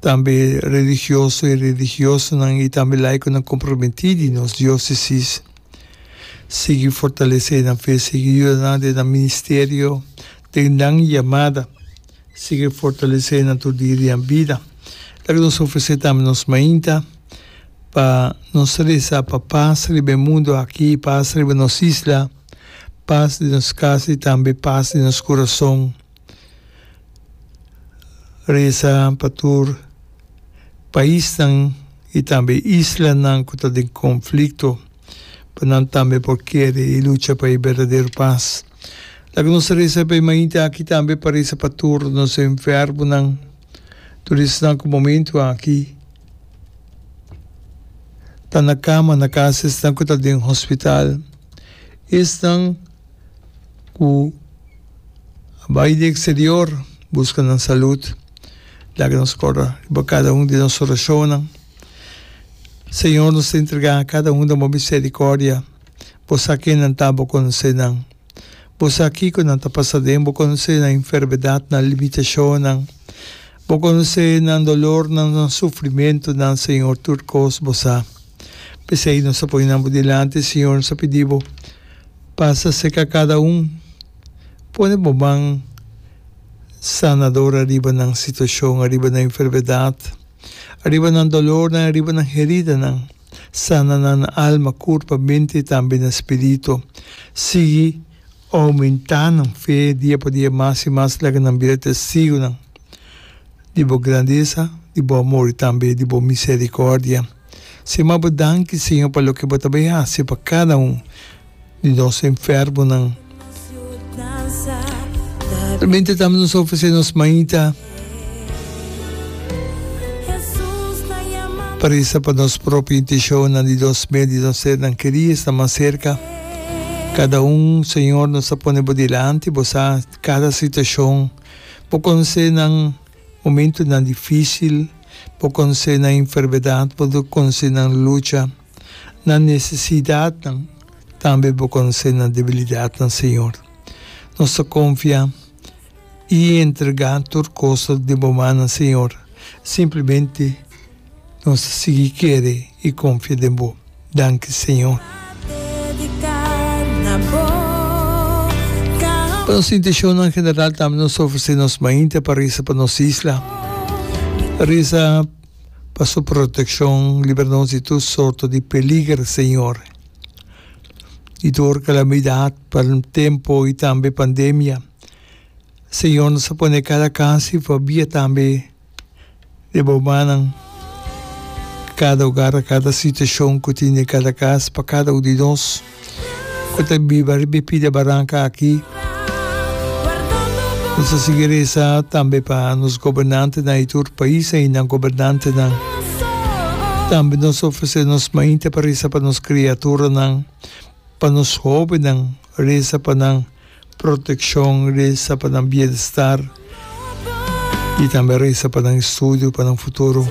Tambe religioso i religiosonan i tambe laikonan komprometí di nos diósesis sigui fortalesé nan fe, sigui yuda nan den nan ministerio, den nan yamada, sigui fortalesé nan tur dia riba bida. Laga nos ofresé tambe nos mainta pa nos resa pa pas riba e mundu aki, pas riba nos isla, pas den nos kas i tambe pas den nos kurason. Resa pa tur paisnan i tambe islanan ku ta den konflikto pa nan tambe por kere i lucha pa e berdadero pas. Laga nos resa pa e mainta aki tambe pa resa pa tur nos enfermunan, tur esnan ku momentu aki ta na kama na kas esnan ku ta den hospital, esnan ku. a bai di eksterior buska nan salud. Laga nos kòrdá riba kada un di nos orashonnan. Señor, nos ta entregá kada un den bo miserikòrdia. Bo sa kennan ta, bo konosé nan. Bo sa kiko nan ta pasá den, bo konosé nan enfermedat, nan limitashonnan. Bo konosé nan dolornan, nan sufrimentunan, Señor, tur kos bo sa. P'esei nos ta pone nan bo dilanti, Señor, nos ta pidi bo. Pasa seka kada un. Pone bo man sanador ariba nan situashon, ariba nan enfermedat, ariba nan dolornan, ariba nan heridanan. Sana nan na alma, kurpa, mente i tambe na spiritu. Sigui oumentá nan fe dia pa dia mas i mas laga nan bira testigunan di bo grandesa, di bo amor i tambe di bo miserikòrdia. Sima bo danki, Señor, pa loke bo ta bay haci pa cada un di nos enfermonan. Realmente tambe nos ta ofrece nos maita pa reza pa nos propio intencionnan di nos mes, di nos sernan keri esnan mas cerca. Cada un, Señor, nos ta pone bo dilanti. Bo sa cada situacion. Bo conoce nan. Momentunan difísil por konse nan enfermedat bo ta konse nan lucha, nan nesesidatnan, tambe bo konse nan debilidatnan, Señor. Nos ta konfia i entregá tur kos di bo manan, Señor, simplemente. Nos ta sigui kere i konfia den Bo. Danki, Señor. Pa nos inteshonnan general tambe nos ta ofresé nos mainta pa reza pa nos isla. Reza pa Su protekshon, libra nos di tur sorto di peliger, Señor, di tur kalamidat pa tempo i tambe pandemia. Señor, nos ta pone kada kas i fabia tambe di boumanan, kada ogar, a kada situashon ku tin den kada kas, pa kada un di nos ku ta biba riba e pida baranka aki. Nos a sigui resa tambe pa nos gobernantenan i tur pais ei nan gobernantenan. Tambe nos a ofresé nos mainte pa resa pa nos kriaturanan, pa nos hóbennan, resa pa nan. Protekshon resa pa nan bienester i tambe resa pa nan estudio, pa nan futuro.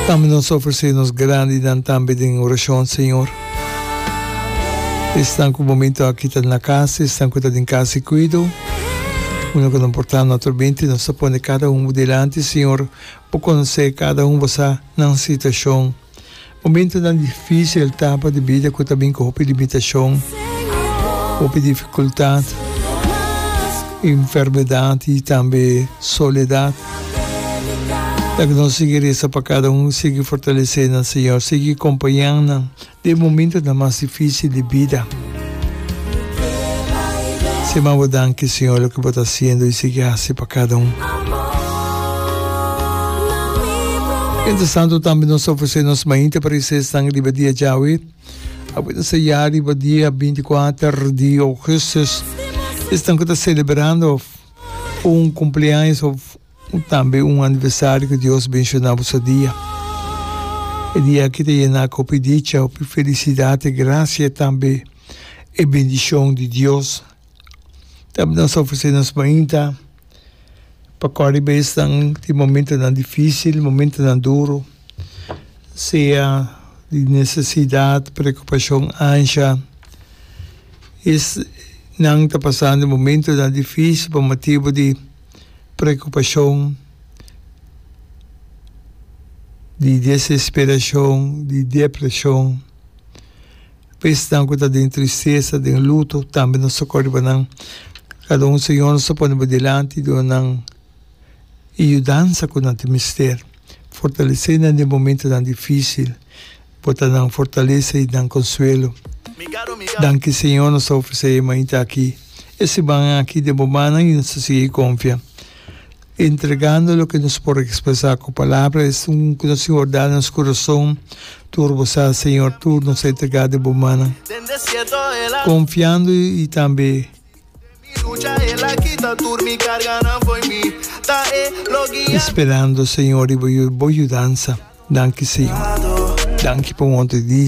Tambe nos ta ofresé nos grandinan tambe den orashon, Señor. Esnan ku momento aki ta na kas, esnan ku ta den kas di kuido, unda ku nan por ta naturalmente. Nos ta pone kada un bo dilanti, Señor, bo konosé kada un bo sa nan situashon. Momentonan difísil, tapa di bida ku ta bin ku hopi limitashon, hopi difikultat, enfermedat i tambe soledat. Laga nos sigui resa pa kada un, sigui fortalesé nan, Señor. Sigui kompañá nan den momentonan mas difísil di bida. Si man bo danki Señor loke bo ta haciendo y sigui haci pa cada un. Mientras tanto tambe nos ta ofrecer nos mainta pa recesnan riba dia djawe. Awe ta ser ya riba dia binti kuater di Augustus. Esnan cu ta celebrando un cumpleaños of. Cu tambe un aniversario cu Dios benshona bo sa dia. E dia aki ta yena cu hopi dicha, hopi felicidad, e gracia y tambe e bendicion di Dios. Tambe nos ta ofrece nos mainta pa cori bay esnan tin momentonan dificil, momentonan duro, sea di necesidad, preocupacion, ansha. Esnan ta pasando momentonan dificil pa motibo di. preokupashon, di desesperashon, di depreshon. Pesnan ku ta den tristesa, den luto tambe nos ta kor di bonan. Kada un señor nos ta pone bo dilanti, duna nan e yudansa ku nan ta mester. Fortalesé nan den momentonan difísil. Bo ta nan fortalesa i nan konsuelo. Danki Señor nos ta ofresé e mainta aki, e simannan aki den bo mannan i nos ta sigui konfia. Entregando loke nos por ekspresá ku palabra esun ku nos Señor da nos kurason. Tur bo sa Señor, tur nos a entregá den bo mannan konfiando i tambe. Esperando señor riba bo yudansa danki señor danki pa un otro di.